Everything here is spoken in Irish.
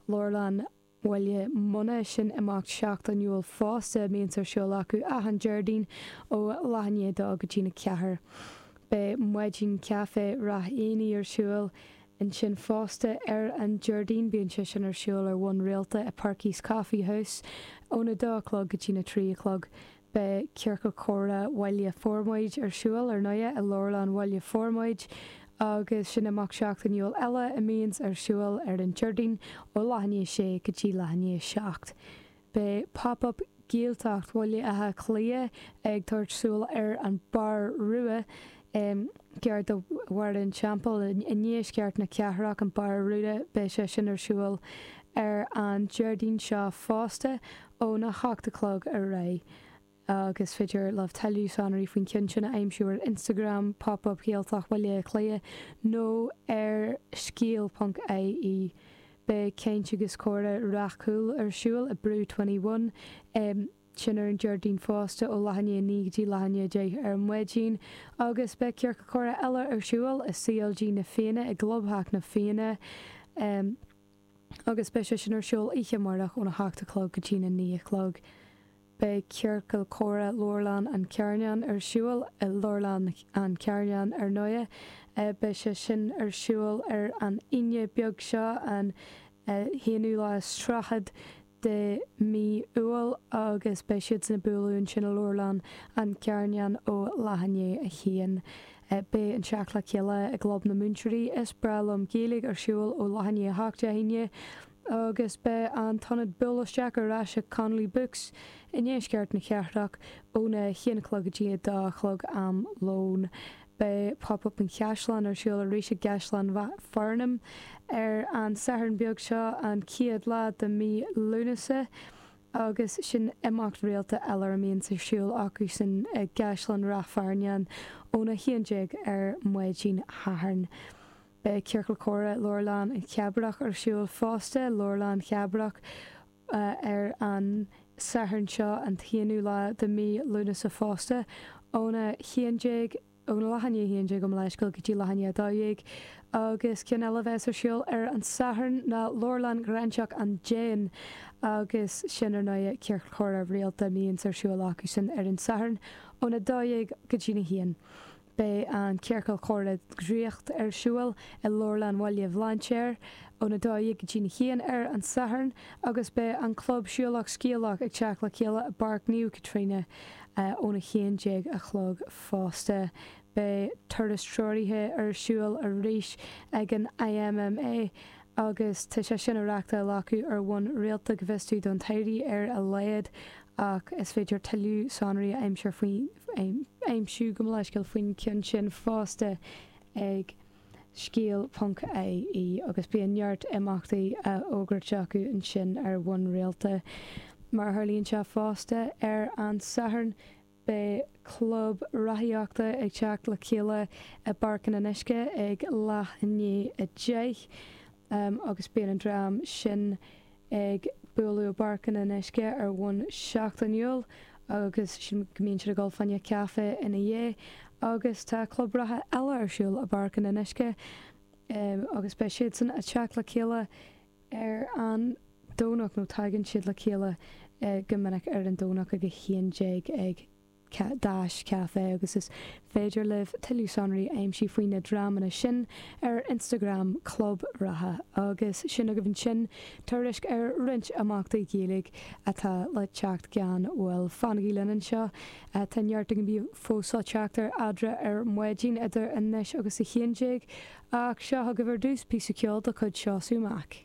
leabharlann Bhaile Munna, sin imeacht seachtainiúil fosta, a mbíonns ar siúl acu achan Déardaoin ó leath i ndiaidh a dó go dtína ceathair. Beidh Maidin Caife Rath Éanaigh ar siúl ansin fosta ar an Déardaoin, bíonn sé sin ar siúl ar bhonn rialta i Perky's Coffee House óna dó a chlog go dtína trí a chlog. Beidh Ciorcal Comhrá Bhaile Formaid ar siúl ar ndóighe i Leabharlann Bhaile Formaid agus sin imeacht seachtainiúil eile a mbíonns ar siúl ar an Déardaoin ó leath i ndiaidh 6 go dtí leath i ndiaidh 7. Beidh Pop Up Gaeltacht Bhaile Átha Cliath ag tabhairt súil ar An Bar Rua gar do Bharra an Teampaill i ndeisceart na cathrach, an Bar Rua, beidh sé sin ar siúl ar an Déardaoin seo fosta óna hocht a chlog ar aghaidh, agus féidir libh tuilleadh sonraí faoin cionn sin a aimsiú ar Instagram Pop Up Gaeltacht Bhaile Átha Cliath nó ar scéal.ie. Beidh Caint agus Comhrá Ráth Cúil ar siúl i Brew 21 i sin ar an Déardaoin fosta, ó leath i ndiaidh a naoi go dtí leath i ndiaidh a deich ar maidin, agus beidh Ciorcal Comhrá eile ar siúl i CLG Na Fianna, i gClubtheach na Fianna, agus beidh sé sin ar siúl oíche amárach óna hocht a chlog go dtína naoi a chlog. Beidh Ciorcal Comhrá Leabharlann an Charnáin ar siúl i Leabharlann an Charnáin ar ndóighe. Beidh sé sin ar siúl ar an Aoine beag seo, an t-aonú lá is tríochad de mhí Iúil agus beidh siadsan ag bualadh ansin i Leabharlann an Charnáin ó leath i ndiaidh a haon. Beidh an teacht le chéile i gClub na Múinteoirí Is Breá Liom Gaeilge ar siúl ó leath i ndiaidh a 8 Dé hAoine agus beidh an t-ionad buail isteach ar ais ag Connolly Books i ndeisceart na cathrach óna 1 a chlog go dtí a 2 a chlog am lóin. Beidh Pop Up an Chaisleáin ar siúl arís i gCaisleán Ráth Fearnáin ar an Satharn beag seo, an chéad lá de mhí Lúnasa, agus sin imeacht rialta eile a mbíonns ar siúl acusan i gCaisleán Ráth Fearnáin óna haon déag ar maidin Shathairn. Beidh Ciorcal Comhrá Leabharlann Chabrach ar siúl fosta, Leabharlann Chabrach, ar an Satharn seo, an t-aonú lá de mhí Lúnasa fosta, óna haon déag, óna leath i ndiaidh a haon déag gabh mo leithscéal go dtí leath i ndiaidh a dó dhéag, agus ceann eile a bheas ar siúl ar an Satharn ná Leabharlann Ghráinseach an Déin, agus sin, ar ndóighe, Ciorcal Comhrá rialta a mbíonns ar siúl acusan ar an Satharn, óna dó dhéag go dtína haon. Beidh an Ciorcal Comhrá Draíocht ar siúl i Leabharlann Bhaile Bhlainséir óna 12 go dtína 1 ar an Satharn agus beidh an Club Siúlach Scéalach ag teacht le chéile i bPáirc Naomh Caitríona óna 11 a chlog fosta. Beidh turas treoraithe ar siúl arís ag an IMMA. agus tá sé sin á reáchtáil acu ar bhonn rialta go bhfios dúinn don am i láthair ar a laghad, ach is féidir tuilleadh sonraí a aimsiú go mion faoin gceann sin fosta ag scéal ponc IE agus bíonn neart imeachtaí á bhfógairt acu ansin ar bhonn rialta. Mar a tharlaíonn sé fosta, ar an Satharn, Beidh club reathaíochta ag teacht le chéile i bPáirc an Fhionnuisce ag leath i ndiaidh a deich agus bíonn an dream sin ag bualadh i bPáirc an Fhionnuisce ar bhonn seachtainiúil agus sílim go mbíonn siad ag ól braon caife ina dhiaidh agus tá club reatha eile ar siúl i bPáirc an Fhionnuisce agus beidh siadsan ag teacht le chéile ar an Domhnach, nó tagann siad le chéile go minic ar an Domhnach ag 11 ag Dash Café agus is féidir libh tuilleadh sonraí a aimsiú faoi na dreamanna sin ar Instagram Club Reatha. Agus sin agaibh ansin tuairisc ar roinnt imeachtaí Gaeilge atá le teacht gan mhoill. Fanaigí linn anseo Tá neart againn fós ag teacht ar Adhmhaidin ar maidin idir anois agus a haon déag, ach seo chugaibh ar dtús píosa ceoil de chuid Seo Linn amach.